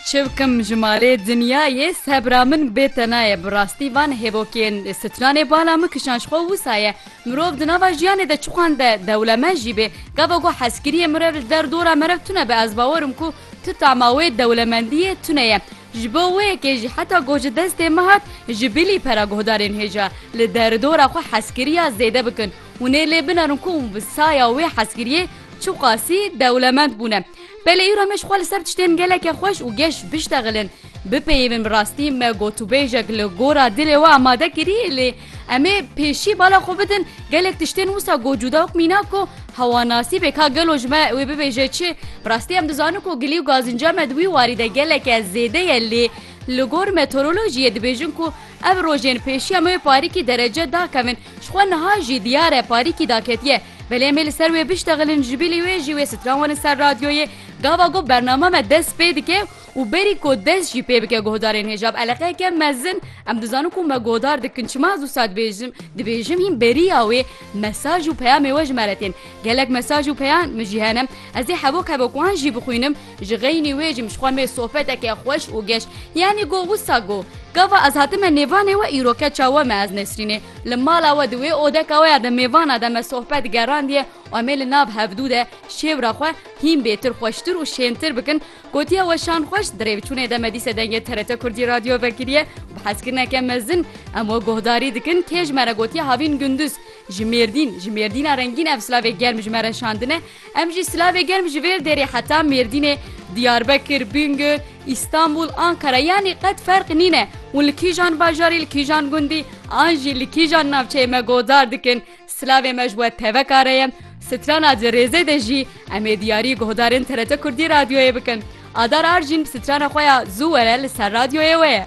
Çi bikim ji malê dinyayê sebra min bê tena ye bi rastî van hêvokên stranê bala min kişan ji xwe wisa ye mirov di nava jiyanê de çiqande dewlemend jî bê gava ku hezkiriyê mirev li der dora merev tune be ez bawer im ku tu tama wê dewlemendiyê tune ye ji bo wê yekê jî heta ku ji destê min hat ji bilî pera guhdarên hêja li der dora xwe hezkiriya zêde bikin hûnê lê binerin ku bi saya wê hezkiriyê Çiqasî dewlemend bûne. Pele îro me ji xwe li ser tiştên geleke xweş û geş biştexilin. Bipeyivin bi rastî me gotûbêjek li gora dilê we amade kirî lê em ê pêşî bala xwe bidin gelek tiştên wisa got cûda û mînak ku hewa nasîbê ka gelo ji me wê bibêje çi. Bi rastî em dizanin ku gilî û gazinca me di wî warî de geleke zêde ye lê li gor meteorolojiyê dibêjin ku ev rojên pêşiya me wê parîkî derece dakevin. Ji xwe niha jî diyar e parîkî daketiye. Belê em ê li ser wê biştexilin ji bî lê wê jî wê stran werin ser radyoyê. Gava ku bername me dest pê dike û berî ku dest jî pê bike guhdarên hêja bi eleqeyeke mezin em dizanin ku me guhdar dikin. Çima ez wisa dibêjim? Dibêjim hîn beriya wê mesaj û peyamê we ji me re tên. Gelek mesaj û peyan min jî hene. Ez ê hevok hevok wan jî bixwînim. Ji xeynî wê jî mijxwe mê sohbeteke xweş û geş. Yanî go wisa go. Gava ez hatime nêvanê we îro keça we me ez Nesrînê. Li mala we di wê odeka we ya di mêvana de me sohbet gerandiye û em ê li nav hevdû de şêwra xwe hîn bêtir xweştir û şêntir bikin. Gotiye we şan xweş di rêvçûnê de me dîse dengê TRT Kurdî radyo vekiriye û bi hezkirineke mezin em we guhdarî dikin. Kê ji me re gotiye havîn gunduz. Ji Mêrdîn. Ji Mêrdîna rengîn ev silavê germ ji me re şandine. Em jî silavê germ ji vêr dêrê heta Mêrdînê, Diyarbekir, Bingöl, Îstanbul, Ankara yanî qet ferq nîne û li kîjan bajarî, li kîjan gundî an jî li kîjan navçeyê me gohdar dikin. Silavê me ji we teveka re ye. Strana di rêzê de jî em ê diyarî guhdarên TRT Kurdî Radyoyê bikin. Adar Arjîn strana xwe ya Zû were li ser radyoyê we ye.